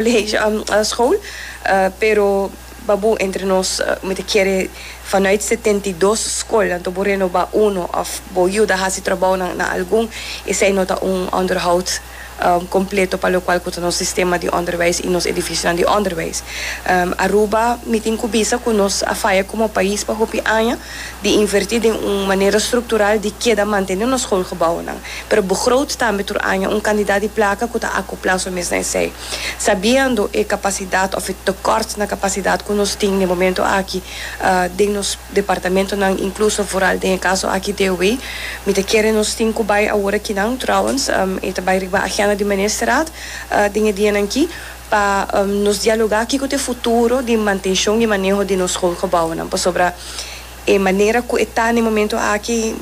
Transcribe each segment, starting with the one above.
Leeg a school pero baboe entre nos mi ta kere vanuit setenta i dos school anto bo renoba uno of bo yuda hasi trabounan na algun esey no ta un onderhoud completo pa locual cu ta nos sistema di onderwijs y nos edificionan di onderwijs. Aruba mi tin cu bisa cu nos a faya como pais pa hopi aña di invertí den un manera struktural di keda mantené nos skolgebounan, pero begroot tambe tur aña un kantidat di plaka ku ta akoplá su mes na esei. Sabiendo e kapasidat òf e tekòrt na kapasidat ku nos tin den momentu aki den nos departamentonan, inkluso vooral den e kaso aki DOW, mi ta kere nos tin ku bai awor aki nan, trouwens, e ta bai riba agenda di Ministerraad den e dianan ki, pa nos dialogá kiko ta e futuro di mantenshon i maneho di nos schoolgebouwennan, pasobra e manera ku e ta na e momento aki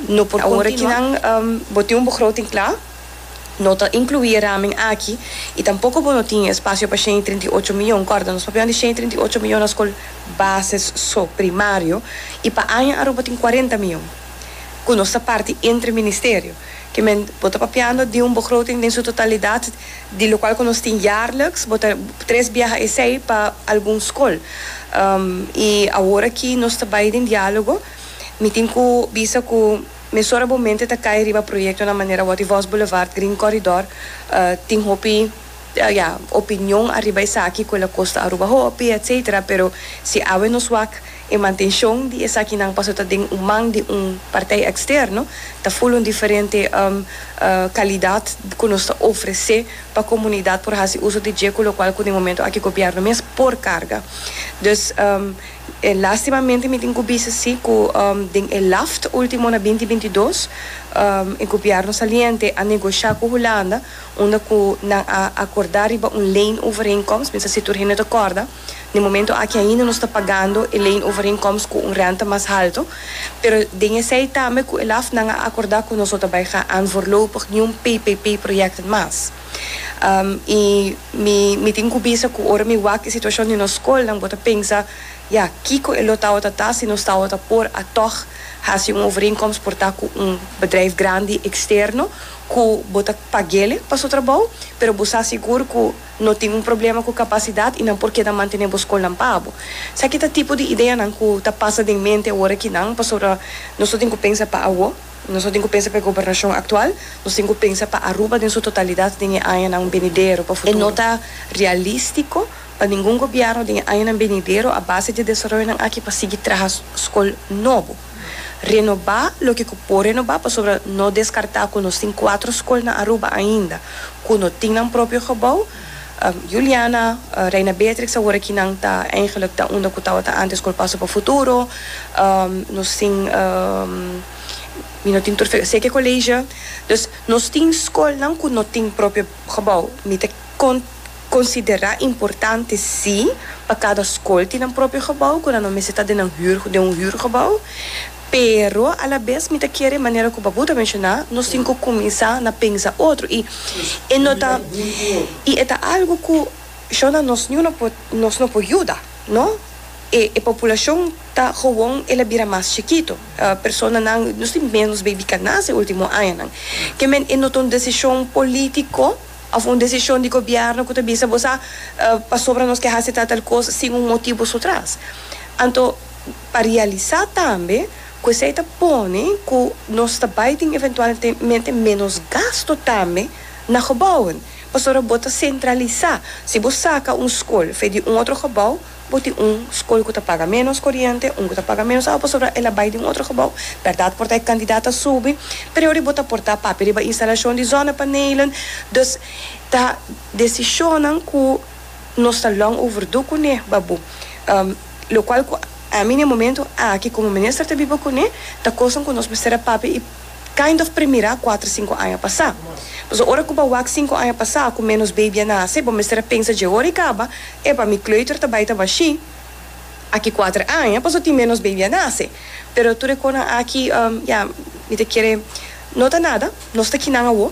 no por kontinuá. Awor aki nan bo tin un begroting kla, no ta inkluí e ramen aki i tampoko bo no tin e espasio pa shen i trinta i ocho mion. Kòrda, nos papia di shen i trinta i ocho mion na skol bases so, primario, i pa aña Aruba tin kuarenta mion ku nos ta parti entre ministerio. Ke men, bo ta papiando di un begroting den su totalidat, di lokual ku nos tin yarleks bo ta tres biaha esei pa algun skol i awora ki nos ta bai den diálogo mi tin ku bisa ku mesora bo mente ta kai riba proyektonan manera Wòt i Vòs Boulevard Green Corridor tin hopi ya opinion ariba esaki ku el a kosta Aruba hopi etcétera pero si awe nos wak E mantenshon di esakinan paso ta den un man di un partij eksterno, ta full un diferente kalidat ku nos ta ofresé pa komunidat por hasi uso di dje, ku lokual ku den momento aki gobièrnu mes por karga. Dus, lastimamente mi tin ku bisa si ku den e laft último na binti binti dos e gobièrnu saliente a negosha ku Hulanda unda ku nan a akordá riba un leenovereenkomst, mi sa si tur hende ta kòrda. Na e momento aki ainda nos ta pagando e leenoverinkomst ku un rènta mas haltu, pero den esei tambe ku e LAFnan a akordá ku nos no ta bai gaan voorlopig niun PPP-proyèkten mas. I mi mi tin ku bisa ku ora mi wak e situashon di nos skolnan bo ta pensa, Ya, kiko e lo tawata ta si nos tawata por a tòg hasi un overeenkomst por ta ku un bedrijf grandi eksterno ku bo ta pag'el'e pa su trabou, pero bo sa sigur ku. No tin un problema cu capacidad y nan por keda mantene bo scolnan pa abo. Saki ta tipo di ideanan cu ta pasa den mente awor aki nan, pasobra nos no tin cu pensa pa awo, nos no tin cu pensa pa e gobernacion actual, nos tin cu pensa pa Aruba den su totalidad den e añanan benidero, pa futuro. E no ta realistico pa ningun gobierno den e añanan benidero a base di e desaroyonan aki pa sigui traha scol nobo. Renobá loke ku por renobá pasobra no deskartá ku nos tin kuater skol na Aruba ainda ku no tin nan propio gebou. Juliana, Reina Beatrix awor aki nan ta eigenlik ta unda ku tabata antes skol Paso pa Futuro. Nos tin mi no tin tur seki koleisje. Dus nos tin skolnan ku no tin propio gebou. Mi ta. Con considera importante si pa cada scol tin nan propio gebouw cu nan no mester ta den nan huur den un huur gebouw pero a la bes mi ta kere manera cu Babu ta menciona nos tin cu cuminsa na pensa otro y e no ta y e ta algo cu shona nos niu no por nos no por yuda no e e populacion ta gewoon el a bira mas chikito personanan nos tin menos baby cu a nace ultimo añanan kemen e no ta un decision politico. Of un desishon di gobièrnu ku ta bisa bo sa pasobra nos ke hasi tal tal kos sin un motibu su tras. Anto pa realisá tambe ku esei ta pone ku nos ta bai tin eventualmente ménos gastu tambe na gebouwen pasobra bo ta sentralisá. Si bo saka un skol fe di un otro gebou, Bo tin un skol ku ta paga ménos koriente, un ku ta paga ménos awa pasobra el a bai den otro gebou. Bèrdat por ta e kandidat a subi, pero e ora bo ta por ta papia riba instalashon di zònapanelen. Dus ta desishonnan ku nos ta lòng overdu kuné, babu. Lokual ku ami na e momentu aki komo minister ta biba kuné, ta kosnan ku nos mester a papia i Kind of primirá kuater sinku aña pasá. Pasobra ora ku bo wak sinku aña pasá ku ménos baby a nase, bo mester a pensa dje ora i kaba, Epa, mi kleuter ta bai ta bashí aki kuater aña, pasobra tin ménos baby a nase. Pero tur e konan aki, ya, mi ta kere, no ta nada, nos ta ki nan awo.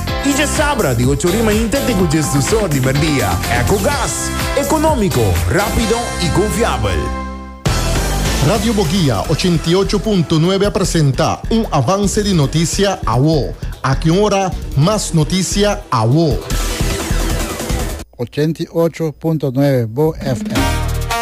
Y dje sabra di ocho rima inte te cu djesdusor di merdia. Ecogas. Economico, rapido y confiabel. Radio Boguia ochenta i ocho punto nuebe a presenta un avance di noticia awo. Aki un ora mas noticia awo. Ochenta i ocho punto nuebe Bo FM.